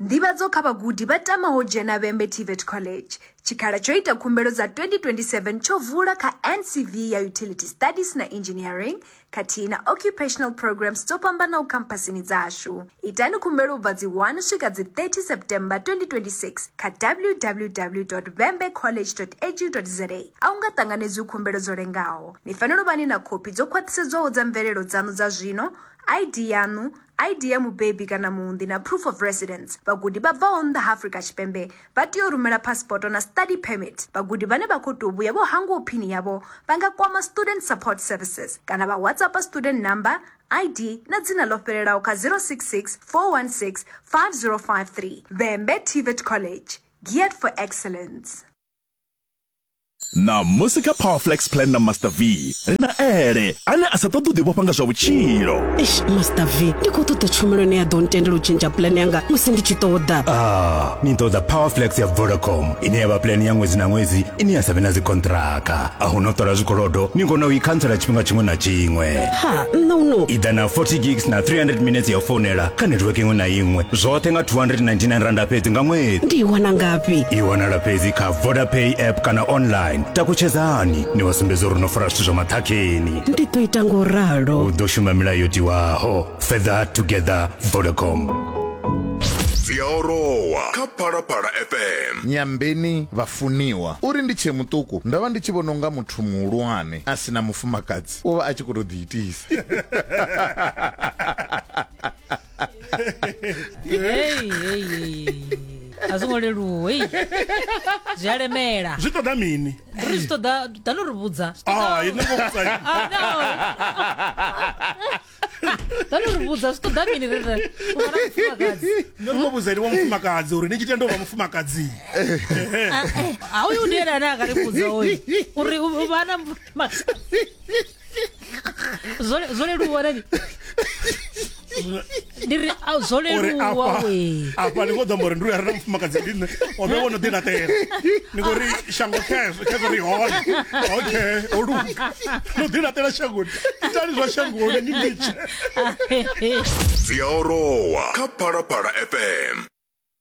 Nḓivhadzo kha vhagudi vha tamaho u dzhena Vhembe TVET College. Tshikhala tsho ita khumbelo dza 2027 tsho vula kha NCV ya Utility Studies na Engineering khathihi na Occupational Programs dzo fhambanaho khamphasini dzashu. Itani khumbelo u bva dzi 1 u swika dzi 30 September 2026 kha www.vembecollege.edu.za. A hu nga ṱanganedzwi khumbelo dzo lengaho. Ni fanela u vha ni na khophi dzo khwaṱhisedzwaho dza mvelelo dzaṋu dza zwino, ID yaṋu, ID ya mubebi kana muunḓi na proof of residence. Vhagudi vha bvaho nnḓa ha Afrika Tshipembe vha tea u rumela phasipoto na study permit. Vhagudi vhane vha khou tou vhuya vho hangwaho phini yavho vha nga kwama Student Support Services kana vha WhatsAppa student number, ID na dzina ḽo fhelelaho kha 066 416 5053. Vhembe TVET College, geared for excellence. ṋamusi kha powerflex plan na master v ri na ele ane a sa ṱoḓi u ḓivhofha nga zwa vhutshilo eish master v ndi khou ṱoḓa tshumelo ine ya ḓo ntendela u tshentsha plan yanga musi ndi tshi ṱoḓa ah ni ṱoḓa powerflex ya vodacom ine ya vha plan ya ṅwedzi na ṅwedzi ine ya sa vhe na dzikontraka a hu no ṱola zwikolodo ni kona u i khantsela tshifhinga tshiṅwe na tshiṅwe ha nṋe u no i ḓa na 40 gigs na 300 minutes ya founela kha netiweke iṅwe na iṅwe zwoṱhe nga 299 randa fhedzi nga ṅwedzi ndi i wana ngafhi i wanala fhedzi kha vodapay app kana online takutshedzani ni vha sumbedza uri no fara zwithu zwa maṱhakheni ndi ḓo ita ngo ralo u ḓo shuma milayo yo tiwaho further together vodacom dzi a orowa kha phalaphala fm nyambeni vhafuniwa uri ndi tshe muṱuku ndo vha ndi tshi vhona unga muthu muhulwane a si na mufumakadzi u vha a tshi khou tou ḓiitisa Hey, hey, hey. a zwo ngo leluwa hey. zwi a lemela zwi ṱoḓa mini ri zwi ṱoḓa tano ri vhudza Ah, i no ngo vhudza ini. Ah, no. tano ri vhudza zwi ṱoḓa mini rere u fana mufumakadzi no ngo vhudza ini wa mufumakadzi uri ni tshi tenda u vha mufumakadzi a uyu ndi ene ane a ka ri vhudza uyu uri u- u vha na mufumakadzi zwo leluwa rani ndi ri zwo leluwa we afha ni khou ḓo amba uri ndi u ya rina mufumakadzi ndi nṋe o vhe wo no ḓi laṱela ni khou ri shango khezwo khezwo ri hone okay o luga no ḓi laṱela shangoni itani zwa shangoni ni mitshe dzi a orowa kha phalaphala fm